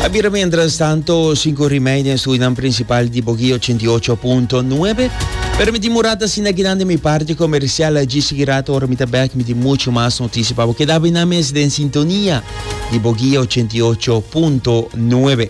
A bira mientras tanto sinku rimei den estudinan principal di Bogi ochenta i ocho punto nuebe. Pero mi tin murat asina kinan den mi parti comercial a dji sigui rato ora mi ta bek mi tin muchu mas noticia pa bo. Keda binan mes den sintonia di Bogi ochenta i ocho punto nuebe.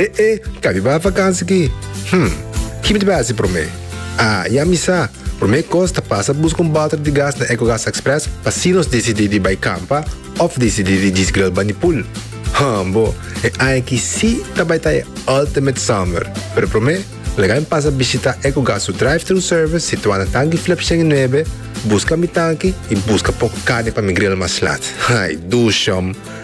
E e, kabi bai vakansi aki? Hm, kipi ta bai hasi promé? Ah, i a misa! Promé kos ta pasa buska un balter di gas na Ecogas Express pa si nos disidí di bai kampa òf disidí di djis gril bani pul. Hm bo, e aña aki sí ta bai ta e ultimate summer! Pero promé, lagain pasa bishitá Ecogas su drive-thru service situá na Tanki Flip shen i nuebe, buska mi tanki i buska poko carni pa mi gril mas laat. Ay, duush, shòm!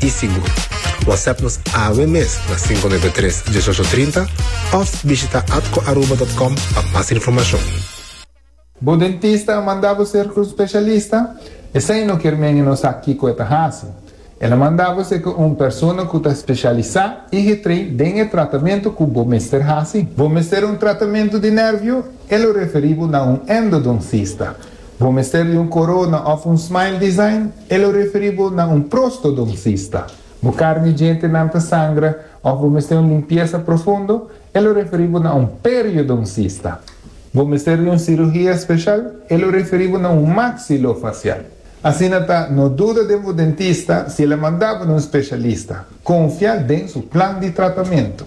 i sigur. Whatsapp nos awe mes na 593-1830 of bishita atcoaruba.com pa mas informacion. Bo dentista a manda bo ser cu specialista? Esey no kier menge nos sa kico e ta haci. El a manda bo ser cu un persona cu ta specialisa y getrei den e tratamento cu bo mester haci. Bo mester un tratamento di nervio? El lo referi bo na un endodoncista. Bo mester di un corona of un smile design? E lo referi bo na un prostodoncista. Bo carni djentenan ta sangra of bo mester un limpiesa profundo? E lo referi bo na un periodoncista. Bo mester di un cirugia special? E lo referi bo na un maxilofacial. Asina ta, no duda den bo dentista si el a manda bo na un specialista. Confia den su plan di tratamento.